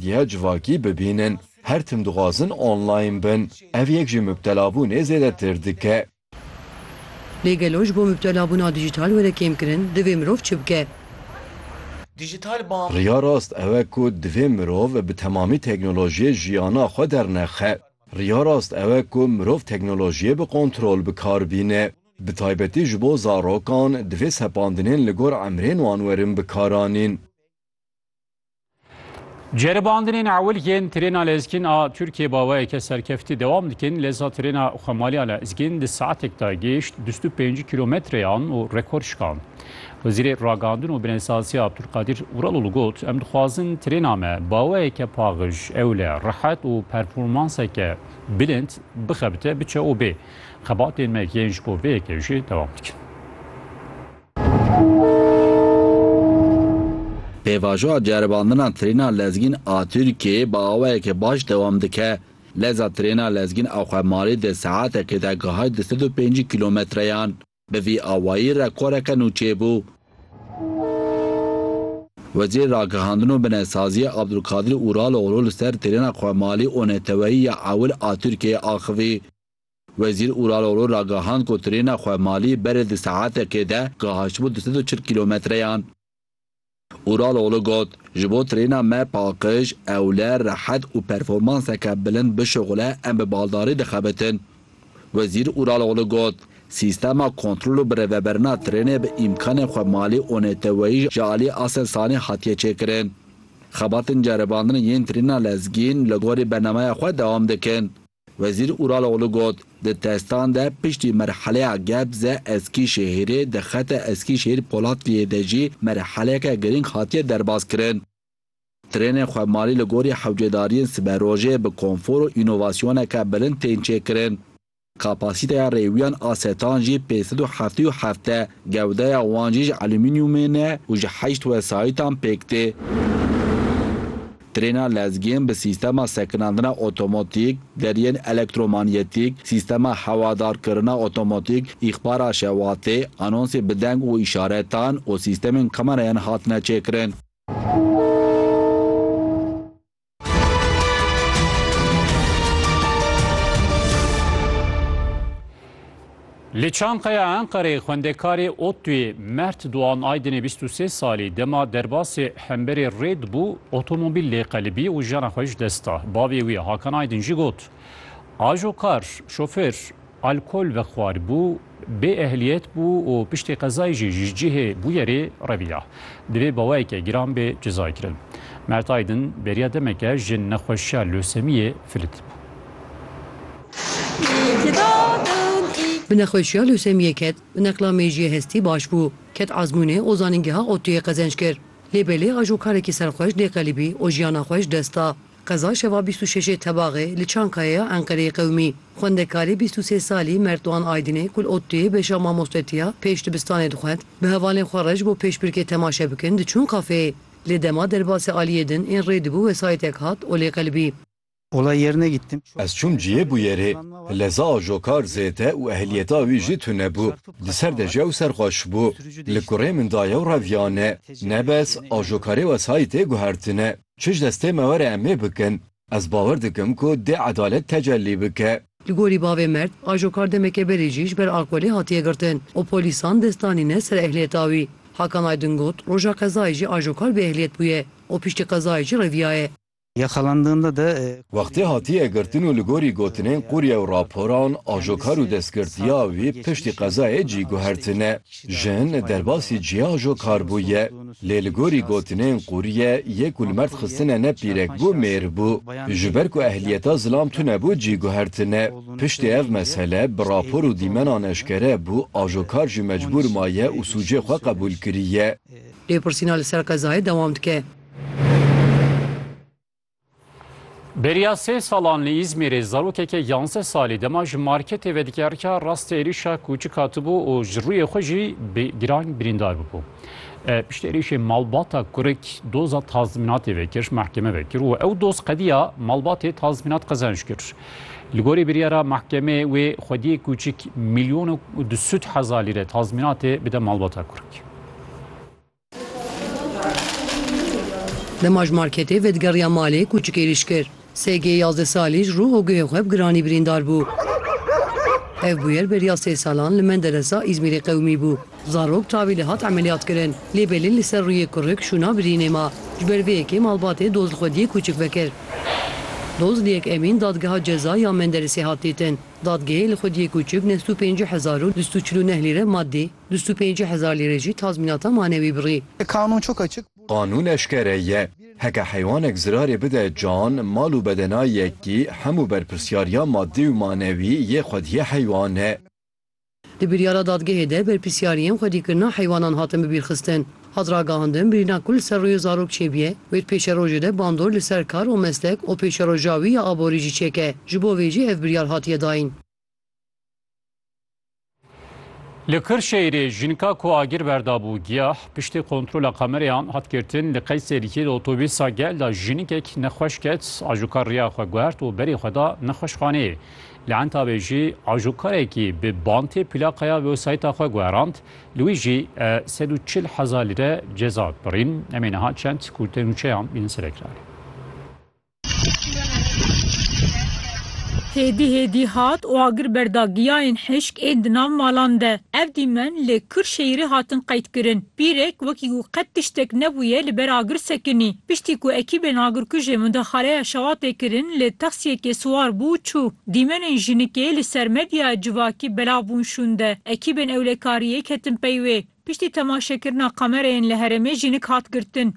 Diya civakî bibînin. Her tim dixwazin online bin. Ev yek ji mubtelabûnê zêdetir dike. Lê gelo ji bo mubtelabûna dîjîtal were kêmkirin, divê mirov çi bike? Riya rast ew e ku divê mirov bi temamî teknolojiyê jiyana xwe dernexe. Riya rast ew e ku mirov teknolojiyê bi kontrol bi kar bîne. Bi taybetî ji bo zarokan, divê sepandinên li gor emrên wan werin bikaranîn. Ceribandinên ewil yên trêna lezgîn a Tirkiyê baweyeke serkeftî dewam dikin. Leza trêna xwemaliya lezgîn di saetek de gêşt bîst û pênc kîlometreyan û rekor şikand. Wezîrê Ragandin û Binêsaziya Abdulkadir Uraloğlu got, Em dixwazin trêna me baweyeke paxij, ewle, rehet û performanseke bilind bixebite, biçe û bê. Xebatên me yên ji bo vê yekê jî dewam dikin. Pêvajoya ceribandina trêna lezgîn a Tirkiyeyê bi awayeke baş dewam dike. Leza trêna lezgîn a xwe malê di saetekê de gihayt di sed û pêncî kîlometreyan. Bi vî awayî rekoreke nû çêbû. Wezîrê Ragihandin û Binesaziyê Abdulkadir Uraloğlu li ser trêna xwe malê û neteweyî ya ewil a Tirkiyeyê axivî. Wezîr Uraloglu ragihand ku trêna xwe malî berê di saetekê de gihaştibû du sed û çil kîlometreyan. Uraloglu got, Ji bo trêna me paqij, ewle, rehet û performanseke bilind bişuxile em bi baldarî dixebitin. Wezîr Uraloglu got, Sîstema kontrol û birêveberina trênê bi îmkanên xwe malî û neteweyî ji aliyê Aselsanê hatiye çêkirin. Xebatên ceribandinê yên trêna lezgîn li gorî bernameya xwe dewam dikin. Wezîr Uraloğlu got, Di testan de piştî merheleya Gebze, Eskîşehîrê, di xeta Eskîşehîr Polatliyê de jî merheleke girîng hatiye derbazkirin. Trênên xwemarî li gorî hewcedariyên siberojê bi konfor û înovasyoneke bilind tên çêkirin. Kapasîteya rêwiyan a setan jî pênc sed û heftê û heft e, gewdeya wan jî ji elûmînîumê ne û ji heşt wesayîtan pêk tê. Trêna lezgên bi sîstema sekinandina otomatîk, deriyên elektromanyetîk, sîstema hewadarkirina otomatîk, îxbara şewatê, anonsê bi deng û îşaretan û sîstemên kamerayan hatine çêkirin. Li Çankaya Enqerê xwendekarê ODTU'yê Mert Doğan Aydinê bîst û sê salî dema derbasê hemberê rê dibû otomobîl lê qelibî û jiyana xwe ji dest da. Bavê wî Hakan Aydin jî got, Ajokar, şofêr, alkol vexwaribû, bê ehliyet bû û piştî qezayê jî ji cihê bûyerê reviya. Divê bawayeke giran bê cezaykirin. Mert Aydin beriya demeke ji nexweşiya lösemiyê filit bû. Bi nexweşiya lûsemiyê ket. Bi neqla mêjiyê hestî baş bû. Ket ezmûnê û zanîngeha ODTUYê qezenç kir. Lê belê a jo karekî serxweş dê qelibî û jiyana xwe ji dest da. Qeza şeva bîst û şeşê Tebaxê li Çankaya ya Enqereyê qewimî. Xwendekarê bîst û sê salî Mert Doğan Aydinê ku li ODTUYê beşa mamostetîya pêş dibistanê dixwend, bi hevalên xwe re ji bo pêşbirkê temaşe bikin diçûn kafeyê. Lê dema derbasê aliyê din ên rê dibû wesayîtek hat û lê qelibî. Olay yerine gittim. Ez çûm ciyê bûyerê. Leza ajokar zêde û ehliyeta wî jî tune bû. Di ser de jew serxweş bû. Li kurê min da yew reviyane. Nebes, ajokarê wesayîtê guhertine. Çi ji destê me were em ê bikin. Ez bawer dikim ku dê edalet tecellî bike. Li gorî bavê Mert, ajokar demeke berê jî ji ber alkolê hatiye girtin û polîsan dest danîne ser ehliyeta wî. Hakan Aydin got, Roja qezayê jî ajokar bêehliyet bûye û piştî qezayê jî reviyaye. Ya xelandığında da e, Wextê hatiye girtin û li gorî gotinên qûrye û raporan, ajokar û destgirtiya wî piştî qezayê cî guhertine. Jin derbasî cihê ajokar bûye. Lê li gorî gotinên qûrye, yê ku li merd xistine ne pîrek bû, mêr bû. Ji ber ku ehliyeta zilam tunebû cî guhertine. Piştî ev mesele bi rapor û dîmenan eşkere bû, ajokar jî mecbûr maye û sûcê xwe qebûl kiriye. Lêpirsîna li ser qezayê dewam dike. Beriya sê salan li Îzmîrê zarokeke yanzdeh salî dema ji marketê vedikerika rastê êrîşa kûçik hatibû û ji rûyê xwe jî giran birîndar bûbû. E, piştî êrîşê malbata kurik doza tazminatê vekir, mahkeme vekir û ew doz qediya malbatê tazminat qezenç kir. Li gorî biryara mahkemê wê xwediyê kûçik milyon û du sûd hezar lîre tazminatê bide malbata kurik. Dema ji marketê vedigeriya malê kûçik êrîş kir. SG yazdeh salî ji rû û guhê xwe bi giranî birîndar bû. Ev bûyer beriya sê salan li Menderesa Îzmîrê qewimî bû. Zarok tavî li hat emeliyat kirin lê belê li ser rûyê kurik şûna birînê ma. Ji ber vê yekê malbatê doz li xwediyê kûçik vekir. Doz li yek Emîn Dadgeha Ceza ya Menderesê hat dîtin. Dadgehê li xwediyê kûçik neh sed û pêncî hezar û du sed û çil û neh lîre maddî, Du sed û pêncî hezar lîre jî tazmînata manewî birî. Qanûn eşkere ye. Heke heywanek zirarê bide can, mal û bedena yekî, hemû berpirsyariya madî û manewî yê xwediyê heywan e. Di biryara dadgehê de berpirsyariyên xwedîkirina heywanan hatin bibîrxistin. Hat ragihandin birîna ku li ser rûyê zarok çêbûye wê di pêşerojê de bandor li ser kar û meslek û pêşeroja wî ya aborî jî çêke, ji bo vê jî ev biryar hatiye dayîn. Li Kırşehirê jinka ku agir berdabû giyah piştî kontrola kamereyan hat girtin li Qeyserîkê di otobîsa gel da jinikek nexweş ket ajûkar riya xwe guhert û berê xwe da nexweşxaneyê. Li Entabê jî ajûkarekî bi bantê plaqeya wewsayta xwe guherand li wî jî sed û çil hezar lîre ceza birîn. Em ê niha çend ku tenûçeyan bînin serekranê. Hêdî hêdî hat û agir berda giyayên hişk ên di nav malan de. Ev dîmen li Kirşehîrê hatin qeydkirin. Pîrek wekî ku qet tiştek nebûye li ber agir sekinî. Piştî ku ekîbên agirkujê mudaxaleya şewatê kirin li taksiyekê siwar bû û çû. Dîmenên jinikê li ser medyaya civakî belav bûn şûnde. Ekîbên ewlekariyê ketin pey wê. Piştî temaşekirina kamereyên li herêmê jinik hat girtin.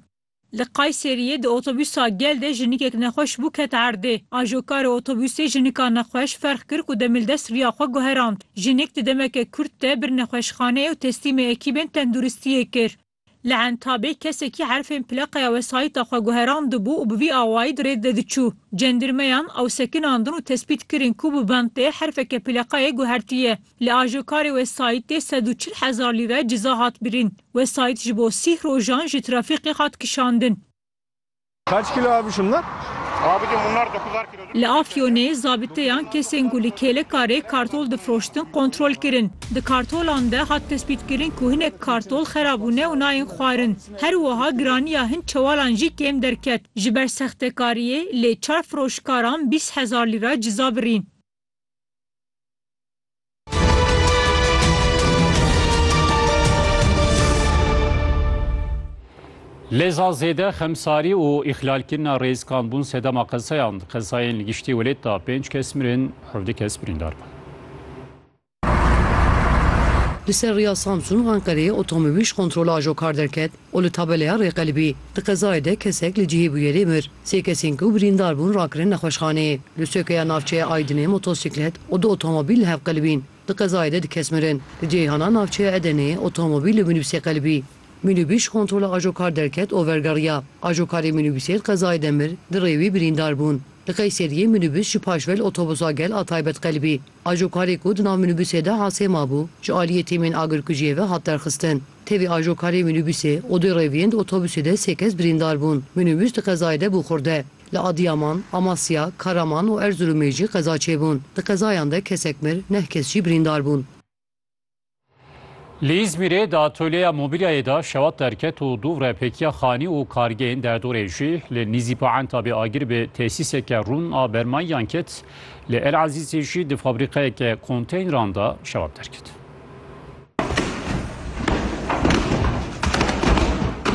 Li Kayseriyê di otobûsa gel de jinikek nexweş bû ket erdê. Ajokarê otobûsê jinika nexweş ferx kir ku demildest riya xwe guherand. Jinik di demeke kurt de bir nexweşxaneyê û teslîmê ekîbên tenduristiyê kir. Li Entabê kesekî herfên plaqeya wesayîta xwe guherandibû û bi vî awayî di rêd de diçû. Cendirmeyan ew sekinandin û tespît kirin ku bi ventê herfeke plaqeyê guhertiye. Li ajokarê wesayîtê sed û çil hezar lîre ciza hat birîn. Wesayît ji bo sîh rojan ji trafîqê hat kişandin. Li Afyonê zabiteyan kesên ku li kêlekarê kartol difroştin kontrol kirin. Di kartolan de hat tespîtkirin ku hinek kartol xerabûne û nayên xwarin. Her wiha giraniya hin çewalan jî kêm derket. Ji ber sextekariyê lê çar firoşkaran bîst hezar lîra ciza birîn. Leza zêde, xemsarî û îxlalkirina rêzkan bûn sedema qezeyan. Di qezayên li giştî welêt de pênc kes mirin, hevdî kes birîndar bûn. Li ser rêya Samsun Anqerê otomobîl ji kontrola ajokar derket û li tabeleya rêqelibî di qezayê de kesek li cihê bûyerê mir. Sê kesên ku birîndar bûn rakirin nexweşxaneyê. Li sokeya navçeya Aydinê motosîklet û du otomobîl li hev qelibîn. Di qezayê de du kes mirin. Li ceyhana navçeya Edeneyê otomobîl li mînîbusê qelibî. Mînîbus ji kontrola ajokar derket û vergeriya. Ajokarê mînîbusê di qezayê de mir, di rê wî birîndar bûn. Li Qeyseriyê mînîbus ji paşve li otobusa gel a taybet qelibî. Ajokarê ku di nav mînîbûsê de Hasê mabû, ji aliyê tîmên agirkujiyê ve hat derxistin. Tevî ajokarê mînîbûsê û du rêviyên di otobûsê de sê kes birîndar bûn. Mînîbûs di qezayê de bû xurde. Li Adiyaman, Amasya, Karaman û Erziromê jî qeza çêbûn. Di qezayan de kesek mir, neh kes jî birîndar bûn. Li Îzmîrê di atolyeya mobîlyayê de şewat derket û dûvre pêkiya xanî û kargehên derdorê jî li nîzî Poenta bê agir bi tesîseke rûn a bermayiyan ket. Li El Ezîzê jî di fabrîqeyeke konteyneran de şewat derket.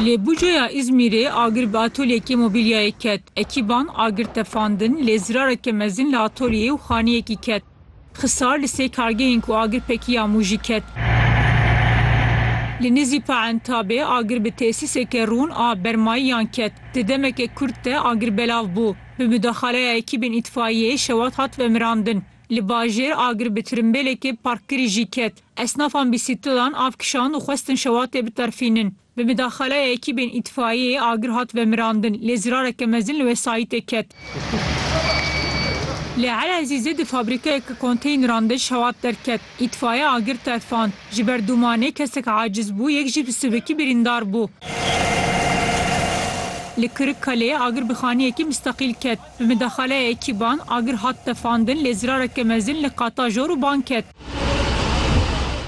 Li Buca'ya Îzmîrê agir bi atolyekê mobîlyayê ket. Ekîban agir tefandin lê zirareke mezin li atolyeyê û xaniyekî ket. Xisar li sê kargehên ku agir pekî ya Mûjî ket. Li nizî Paentabê agir bi tesîseke rûn a bermayiyan ket. Di demeke kurt de agir belav bû. Bi mudaxaleya ekîbên îtfaiyeyê şewat hat vemirandin. Li bajêr agir bi tirimbêlekê parkkirî jî ket. Esnafan bîsîklilan av kişand û xwestin şewatê biterfînin. Bi midaxaleya ekîbên îtfaiyeyê agir hat vemirandin, lê zirareke mezin li wesayîtê ket. Li Elezîzê di fabrîkeyeke konteyneran de şewat derket, îtfaiye agir tefand. Ji ber dûmanê kesek aciz bû, yek jî bi sivikî birîndar bû. Li Kirikkaleyê agir bi xaniyekî mistaqîl ket. Bi midaxaleya ekîban, agir hat tefandin lê zirareke mezin li qata jor û ban ket.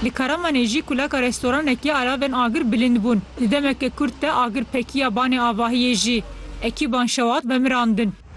Li Karamanê jî kuleka restoranekê alavên agir bilind bûn. Di demeke kurt de agir pekiya banê avahiyê jî. Ekîban şewat vemirandin.